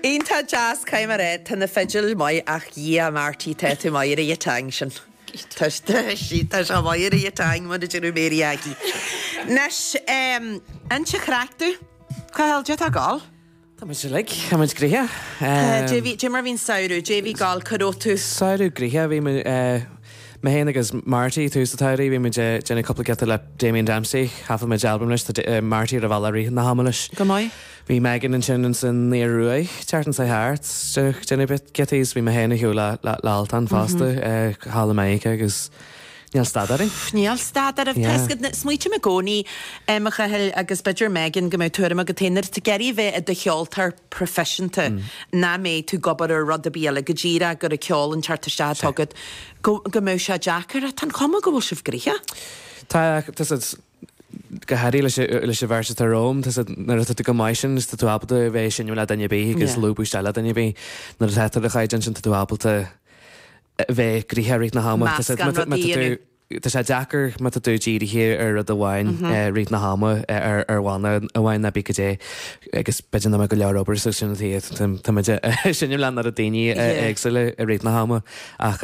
Iontach deas goidé mar ae tá na fidil maith ach dhia Marty tá tú maith ar an thing sin tá sí tá sé maith ar an thing mar a deir Mary Aggie Anois ehm inis an chraic dúinn Cathal goidé tá ag dul. Tá muid uilig tá muid gnoitheach ehm. Goidé bhí goidé mar bhí an samhradh goidé bhí ag dul cuir ó tú. Samhradh gnoitheach bhí muid eh. Mé féin agus Marty, tús an tsamhraidh, bhí muid ag déanamh cúpla giota le Damien Dempsey, thaifead muid albam leis, tá Marty ar an bhealach i rith na hama leis. Go maith. Bhí Megan ansin in san Ioruaidh an tseachtain seo thart, déanamh déanamh bit giota is bhí mé féin ar shiúl le le le Altan fosta ag thall i Meiriceá agus níl stad orainn. Pff níl stad ar bith, tá Yeah. sc- smaoitim i gcónaí em a Chathail agus b'fhéidir Megan go mbeidh tuairim agat féin ar t- ag iarraidh a bheith i do cheoltóir, proifisiúnta. Nach mbeidh tú ag obair ar rud ar bith eile go díreach gurb é ceol an teacht isteach atá agat, go mbeadh sé deacair ach tá an chuma go bhfuil sibh gnoitheach. Tá, tá's agat. Go háirithe leis, leis an bheirt atá romham, tá's agat, nuair atá tú chomh maith sin tá tú ábalta bheith ag seinm le duine ar bith agus Yeah. lúbadh isteach le duine ar bith. Nuair atá tú ar an chaighdeán sin tá tú ábalta bheith gnoitheach i rith na hama. Tá's agat, Meascán má tá, má rudaí tá tú, Tá sé deacair má tá tú dírithe ar rud amháin i rith na hama, ar bhanna amháin nó cibé goidé agus b'fhéidir nach mbeadh go leor obair so sin an tuige tá muid ag seinm le an oiread daoine éagsúla i rith na hama ach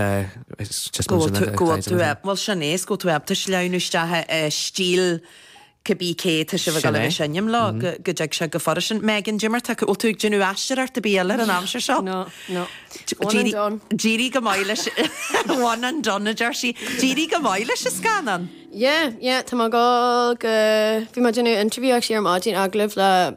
just go bhfuil tú bhfuil sin éasca tú ábalta sleamhnú isteach i stíl Cibé cé atá sibh ag dul a bheith ag seinm leo go dtig sé go furasta. Megan, goidé mar tá, bhfuil tú ag déanamh aisteoireacht ar bith eile ar an aimsir seo? No, no. One and done. D'éirigh go maith leis one and done a deir sí. D'éirigh go maith leis an scannán. Yeah, yeah, tá mé ag dul go, bhí mé ag déanamh interview actually ar maidin agallamh le,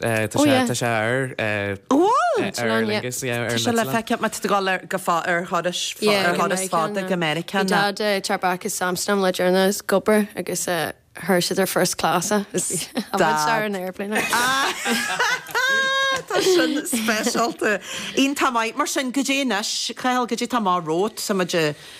Tá sé ar. Tá sé ar Aer Lingus. Tá sé le feiceáil má tá tú ag dul ar go fóill ar thuras fada go Meiriceá. Bhí Dad ag teacht as Amsterdam le deireanas ag obair agus chuir siad ar first class é. Is d'amharc sé ar an aeroplane air. Tá sin speisialta. Iontach maith mar sin. Goidé anois? Cathal Goidé tá amach romhat? Tá muid i.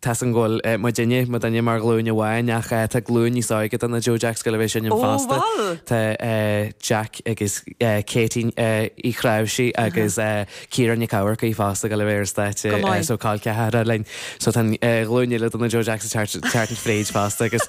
Tá's agam go bhfuil muidinne, muidinne mar ghlúin amháin ach tá glúin níos óige do na Joe Jacks ag dul a bheith ag seinm fosta. Ó bhal. Tá Jack agus Katie Uí Chnáimhsí agus Ciara Nic Amharcaigh fosta ag dul a bheith ar an stáitse so col ceathracha linn. So tá glúin eile do na Joe Jacks ag teacht fríd fosta agus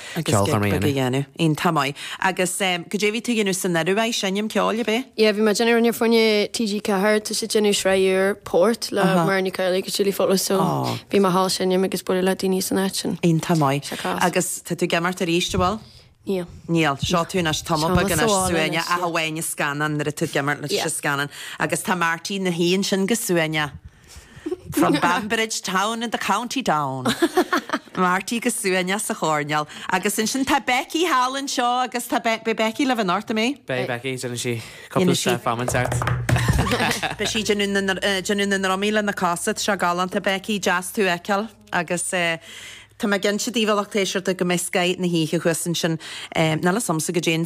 Agus ag dul gig bheag a dhéanamh. Iontach maith. Agus em, cad é bhí tú a dhéanamh san Ioruaidh? Seinm ceoil, ab ea? Yeah, bhí mé a' déanamh, rud fá choinne TG4, tá siad a' déanamh sraith úr, Port, le Aha. Muireann Nic Amhlaoibh agus Julie Fowlis so Ó. bhí mé thall seinm agus bualadh le daoine san áit sin. Iontach maith. Sé class. Agus tá tú ag imeacht aríst, a' bhfuil? Níl. Níl. Seo tú anois tamall Seo mé beag anois, sa bhaile anois, ach yeah. amháin an scannán, a' bhfuil tú ag imeacht le Yeah. sa scannán. Agus tá Marty na shuí ansin go suaimhneach. From Banbridge town in the County Down. Marty go suaimhneach sa choirneál agus ansin tá Becky thall anseo agus tá Be- beidh Becky le bheith in orta mé. Beidh Becky ag déanamh sí couple Dhéanann sí- step amens art. Beidh sí ag déanamh na ndr- eh, déanamh na ndrumaí lena cosa seo galánta Becky deas tú a fheiceáil agus eh, tá mé ag inse daoibh a lucht éisteachta go mbeidh Sky na hoíche thuas ansin eh, ná le somsa go dtí an